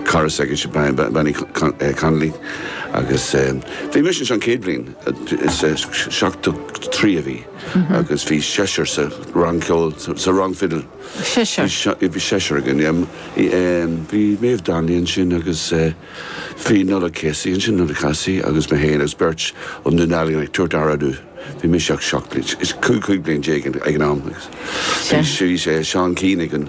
cara s'againne Bean Uí Connolly agus bhí mise ansin an chéad bhliain, seachtó trí a bhí agus bhí seisear sa rang ceoil, sa rang fidil. Seisear? Bhí seisear againn, yeah. Bhí Maeve Donnelly ansin agus bhí Nollaig Casey ansin, Nollaig Ní Chathasaigh agus mé féin agus beirt ó Dhún Dealgan ag tabhairt aire dúinn. Bhí mise seacht, cúig bliain déag ag an am. Bhí Seán Keane againn.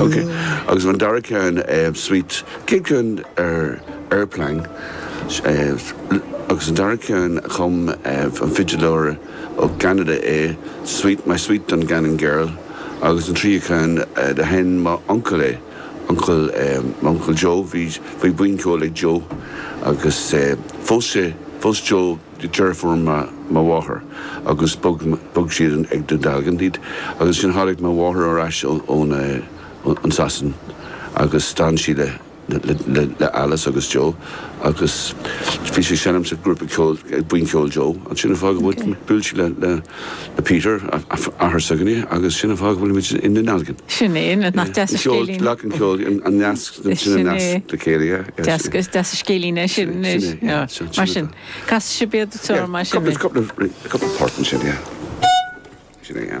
Ok, agus an dara ceann, sweet, céad ceann ar airplane, agus an dara ceann a chum an fidileoir ó Cheanada é, sweet, My Sweet Dungannon Gannon Girl, agus an tríú ceann do sheinn m'uncail é, uncail, m'uncail Joe, bhí, bhí buíon ceoil ag Joe agus phós sé, phós Joe, deirfiúr mo mháthar agus bhog siad go Dún Dealgan, Leeds, agus ansin tháinig mo mháthair ar ais as Sasain agus d'fhan sí le Alice agus Joe agus bhí sí ag seinm sa ghrúpa ceoil, buíon cheoil Joe, agus sin an fáth go bhfuil, bhuail sí le Peter, athair s'againne agus sin an fáth go bhfuilimid i nDún Dealgan. Sin é, nach deas an scéilín. Leac an cheoil, an nasc, sin an nasc le chéile. Deas, is deas an scéilín é sin, mar sin. Casfaidh sibh iad i dtriúr, mar sin é? Sin é.